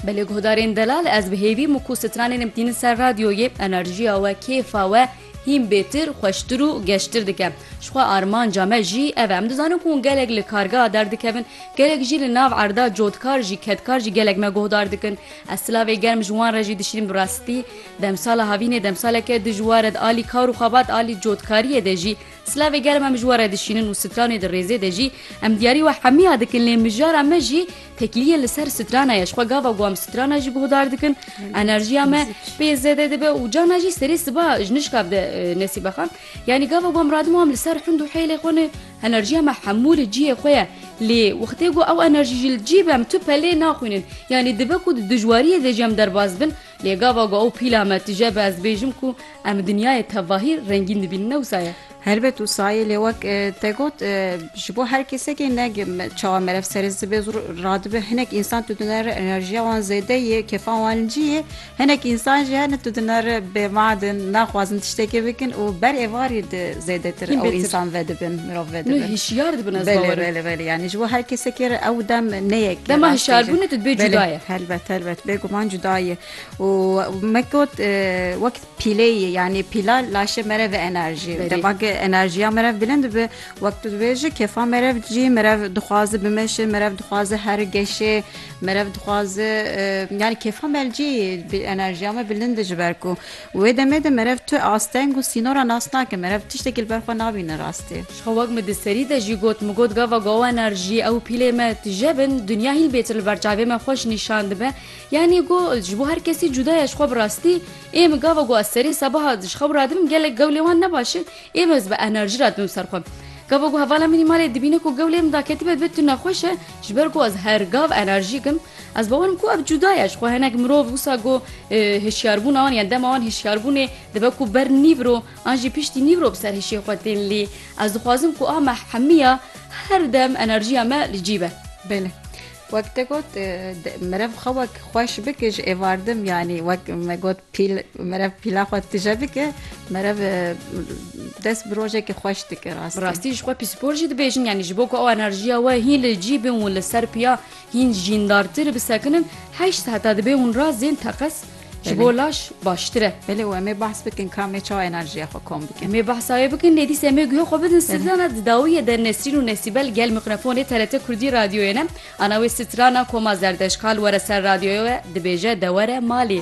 Belê guhdarên delal ez bi hêvî min ku stranên em tînin ser radyoyê enerjiya we kêfa we hîn bêtir xweştir û geştir dike jixwe armanca me jî ev em dizanin ku gelek li kargeha derdikevin gelek jî li nav erda codkar jî kedkar jî gelek me guhdar dikin ez silavê germ ji wan re jî dişînim rastî demsala havînê demsaleke dijwar ed alî kar û xebat alî codkariyê de jî Silavê germ em ji we re dişînin û stranê di rêzê de jî em diyarî we hemiya dikin lê mijara me jî tekiliyên li ser strana ye ji xwe gava ku em strana jî guhdar dikin enerjiya me pê zêde dibe û cana jî serê siba ji nişka bide nesîbexan yanî gava ku em radim û em li ser hind û heylê xwe ne enerjiya me hemû li cihê xwe ye lê wextê ku ew enerjî jî li cî be em tu pelê naxwînin yanî dibe ku di dijwariyê de jî em derbas bin Lê gava ku ew pîla me tije be ez bêjim ku em dinyayê tevahî rengîn dibînin ne wisa ye. Helbet wisa ye lê wek te got ji bo her kesekê ne çawa meriv serê zibe zû radibe hinek însan tu dine re enerjiya wan zêde ye kêfa wan cî ye hinek însan jî hene tu dine re bêmadin naxwazin tiştekê bikin û ber êvarî zêdetir ew însan vedibin. mirov vê dibin. Hişyar dibin ez bawer. Belê belê yani ji bo her kesekê re ew dem neyek. Dema hişyarbûnê tu dibê cuda ye. Helbet helbet bêguman cuda ye û me got wek pîleyê yani pîla laşê merev enerjî dema enerjiya merev bilind dibe wek tu dibêje kefa merev cî merev dixwaze bimeşe merev dixwaze her geşê merev dixwaze yani kefa mercî enerjiya me bilind ji ber ku Wê demê de merev tu asteng û sînora nas nake, merev tiştekî li ber xwe nabîne rastî. Ji xwe wek min di serî de jî got, min got gava go enerjî ew pîlê me tije bin, dinya hîl bêtir li ber çavê me xweş nîşan dibe. Yanî go ji bo her kesî cuda ye ji xwe bi rastî. Ê min gava go ez serê sebaha ji xew radibim gelek gewlê wan ne baş in, ê min ez bi enerjî radibim ser xwe. Gava go hevala min î malê dibîne ku gewlê min daketibe dibe tu nexweş e, ji ber ku ez her gav enerjîk im. Ez bawer im ku ev cuda ye. Jixwe hinek mirov wisa ku hişyarbûna wan yan dema wan hişyarbûnê dibe ku ber nîvro an jî piştî nîvro bi ser hişê xwe tên lê ez dixwazim ku a me hemiya her dem enerjiya me li cî be. Belê. Wek te got mirev xwe wek xweş bike ji êvardim yanî wek me got pîl mirev pîla xwe tije bike mirev dest bi rojekê xweş dike rastî. Bi rastî jixwe pîspor jî dibêjin yanî ji bo ku ew enerjiya we hîn li cî bin û li ser piya Hîn jîn dartir bi sekinin heşt heta dibê hûn ra zên teqez ji bo laş baştir e. Belê û emê behs bikin kamê çawa enerjiya xwe kom bikin. Emê behsayê bikin lê dîs emê guhê xwe bidin sitrana di dawiyê de Nesrîn û Nesîbel gel mikrofonê TRT Kurdî radyoyê ne. Ana wê sitrana koma zerdeşkal were ser radyoye we dibêje de were malê.